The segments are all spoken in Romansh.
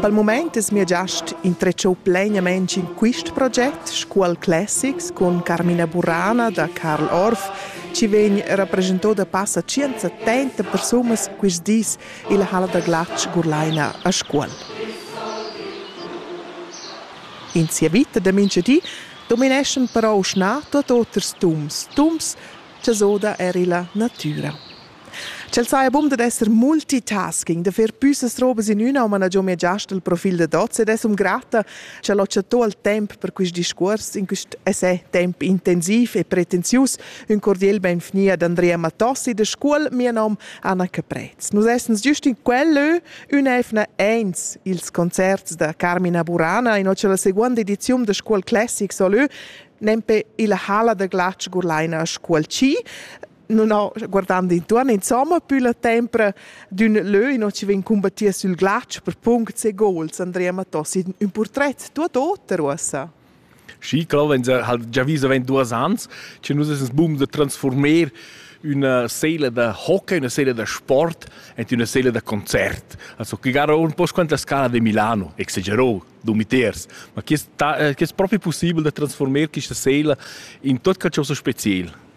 Pel mumaint es mia giast intretschou plainamaing in quist proget sco al Classics cun Carmina Burana da Carl Orff chi vegn rapreschanto da passa tschient settenta persunas quist dis illa halla da glatsch Gurlaina a Scuol. In sia vita da mincha di domineschan però schna tuot oters tums, tums cha s'oda eir illa natüra. Ch'el saja bun dad esser multitasking, da fer püssas robas in üna, ma na giò mia giast il profil da Dots ed es um grata ch'el ho chattò il temp per quist discuors in quist essai temp intensiv e pretensius. Ün cordiel benvgni ad Andrea Matossi da Scuol, mia nom Anna Caprez. Nus essens giust in quel lö ün'eivna eins ils concerts da Carmina Burana in ocha la seguonda ediziun da Scuol Classic solö nempe illa hala da glatsch gurlaina a Scuol Ci. non ho guardando intuorn insomma più la tempra d'ün lö in ci vegn combattir sul glatsch per punct e gols Andrea Mattos in un portret tuot oter uossa Schi, klar, wenn sie halt già viso wenn duas ans, ci nus es bum da transformer una seele da hockey, una seele da sport en una seele da concert. Also che gara un po' quanta scala di Milano, exagerò, du meters, ma che è proprio possibile da trasformare questa seele in tot che ciò so special?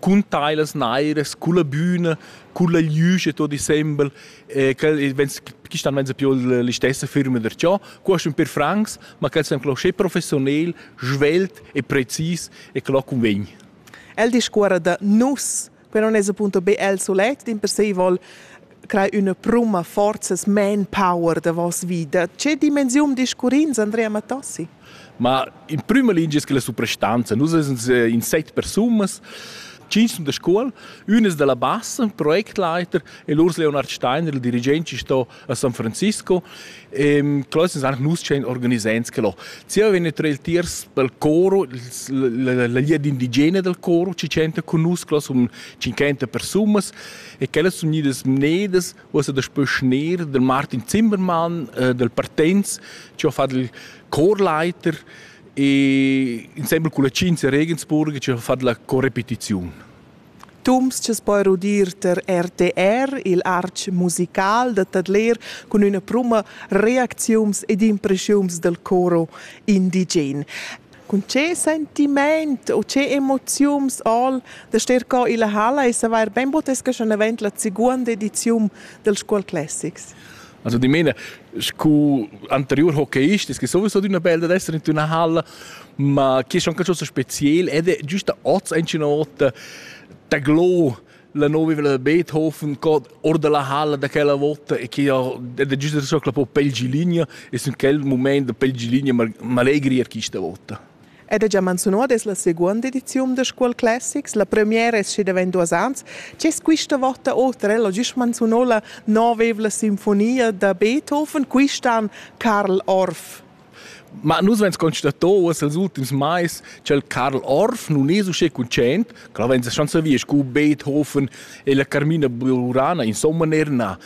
cun tailas nairas, culla büna, culla glüsch e tot insembel, e quel vens quist an venza più l'istessa firma der ciò, quaist ün per francs, ma quel sem clo sche professionel, svelt e precis e clo convegn. El discuorra da nus, però non es appunto be el solet, dimpersei vol crei üna pruma, forzas, manpower da voss vita. Che dimensiun discurrins Andrea Mattossi? Ma in prüma lingia es que la suprastanza. Nus ais in set persunas, tschient sun da scuol, üna es da la bassa, projektleiter, e l'Urs Leonard Steiner, il dirigent, sto a San Francisco. Ehm, quello es anche nus tschient organisants che lo. Zieva vegn tröl tiers pel coro, la la ligia d'indigena dal coro ci tschenta cun nus, quello sun 50 persunas e quellas sun gnidas mnedas ussa daspö schner del Martin Zimmermann, äh, del Partenz, che ho fatto il Chorleiter e insieme con la Cinzia Regensburg ci ha fatto la correpetizione. Tumsches poi rudir ter RTR, il arch musical da Tadler, cun üna pruma reacziums ed impressiums del coro indigen. Cun che sentiment u che emoziuns al da ster co illa halla e savair bain butesca schon avant la seguonda ediziun del Scuol Classics. Also die meine, scu anterior hockeyist, es que sowieso d'una bella d'esser in una halla, ma chi è schon qualcosa spezial ed è giusta oz in nota ta glo la nova da Beethoven cod or dalla halla da quella vota e che ha da giusta so che po pel gilinea e sun quel moment da pel gilinea m'allegria quista vota. Ed è già menziunada es la seguonda ediziun da Scuol Classics, la premiera es schi davent duos ans. C'es quista vota oter, ella giust menziunò la novevla sinfonia da Beethoven, quist'an Karl Orff. Ma nus vegns constato uoss els ultims mais ch'el Karl Orff nun es uschè cuntschaint, ch'el vegns a schanza via scu Beethoven e la Carmina Burana in somma neir na.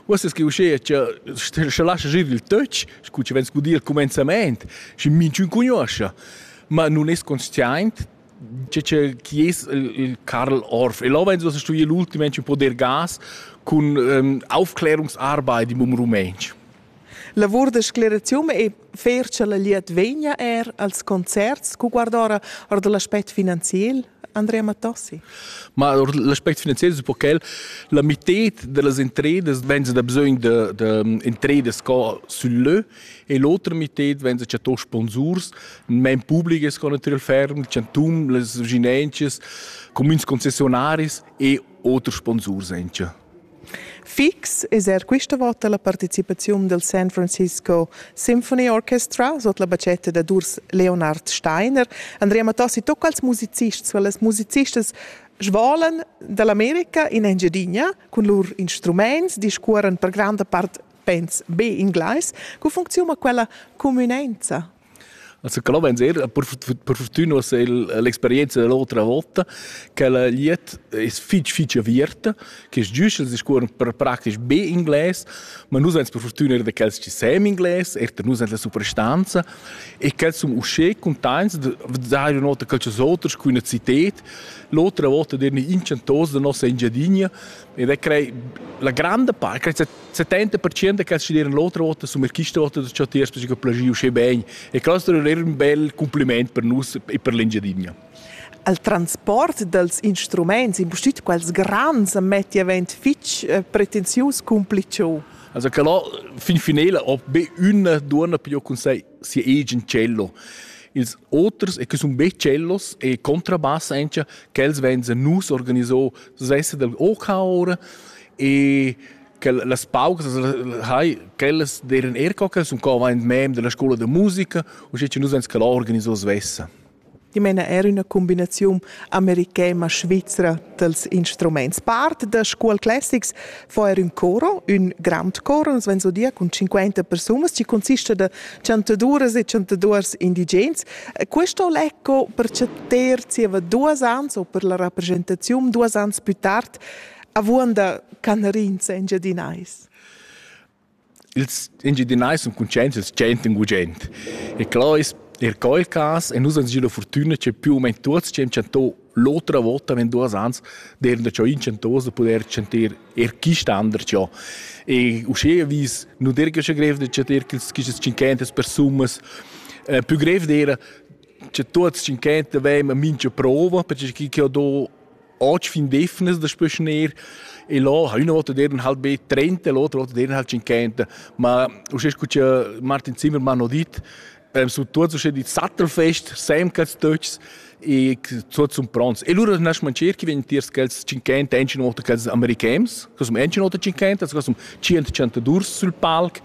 Uoss es que uschea cha scha lascha gir il töch, scu chi vegns gudir al cumenzamaint, schi minchün cugnuoscha. Ma nun es consciaint che che chi es il Karl Orff. E là vegns uossa stuì l'ultim ench poder gas cun ähm, Aufklärungsarbeit im Rumänsch. Lavur da scleraziun e fer cha la liet vegna er als concerts cu guardora or da l'aspect finanziel Andrea Mattossi. Ma l'aspect finanziel es un po quel, la mitted da las intredas venza da bisögn da, da intredas sco sül lö e l'otra mitted venza chatto sponsurs, main publiches co natüral ferm, chantun, las vicinanzas, cumüns concessionaris e oters sponsurs encha. Fix es eir quista vota la partecipaziun del San Francisco Symphony Orchestra sot la bachetta dad Urs Leonard Steiner. Andrea Mattossi tocca als musicists, weil les musicists svolan dall'America in Engiadina cun lur instrumaints, discuoran per granda part pens be inglais. Co funcziuna quella cumünenza? Also Clomenz era per, per fortuna ussa l'experienza dell'otra volta che la liet è fitg fitg aviert che es giuschel si scuola per praktisch be inglés ma nus ans per fortuna er da quels che sem inglés er da nus la suprastanza e quels sun usché contents da dare una nota calchos oters qui una cited l'otra volta derni inchantos da nossa Engiadinha ed è crei la grande parte 70% che decideran l'otra vota sulla questa vota da Ciotiers perché plagiu uschè bene e questo è un bel complimento per noi e per l'Engiadina. Il transport dels instruments, impustüt quels grans, metti avent fitch eh, pretensius cumplicio. Also che là fin finale ho be una donna più con sei sia eigen cello. Ils oters e che sono be cellos e contrabbass anche, che els venzen nus organizò, so sessa del OK ora e che las paucas hai quellas deren er co che sun co ein mem della scuola de musica u sche nus ens quella organiso svessa I mena er üna combinaziun americana svizra dels instruments. Part da Scuol Classics fa er un coro, un grand coro, nos ven so dir cun 50 persunas, ci consista da chantaduras e chantaduors indigens. Questo lecco per chatter zieva duas ans o per la rappresentazione duas ans più tard avuonda canerins engiadinais. Ils engiadinais sun cuntscients dal tschient in gugent. E clò es er quel cas e nus ans gila fortüna che più o meno tuots ci haben chanto l'otra volta wenn duas ans der da ciò in chantos da poter chanter er chi standard ciò e usche vis nu der che grev da chanter quels chi cinquentas persunas eh, più grev d'era che tuots cinquenta vem a mincha prova perché chi che ho do Oggi fin defnes das bisschen eher. E là, einer will dir dann halt be trennt, der Leute will dir halt schon kennt. Ma, du hast gut, Martin Zimmermann noch dit, beim Struktur zwischen die Sattelfest, Samkatstütz, e so zum Bronz. E lura nas man cerchi wenn tiers quels cinquenta ensin oder quels americans, cos um ensin oder cinquenta, cos um cient centadurs sul palc.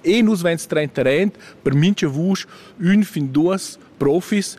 E nus vens trenta rent per mincha vusch un fin duas profis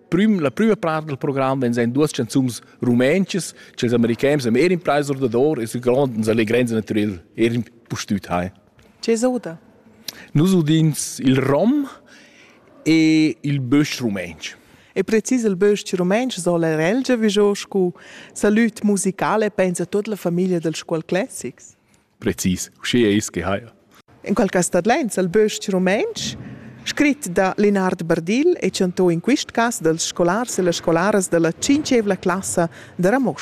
Prüm, la prüma part del program vegn ein duas canzuns rumentschas che els americans am erin preis ordador e su grond uns allegrens naturel erin pustüt hai. Che s'oda? Nus udins il rom e il bösch rumensch. E precis il bösch rumensch soll er elge vigiò scu salut musicale pensa tut la famiglia dels Scuol Classics. precis uschia eis che haja. En quel cas tadlains el bös-ch rumantsch, scrit da Lenard Bardill e chantò in quist cas dals scolars e las scolaras da la tschinchevla classa da Ramosch.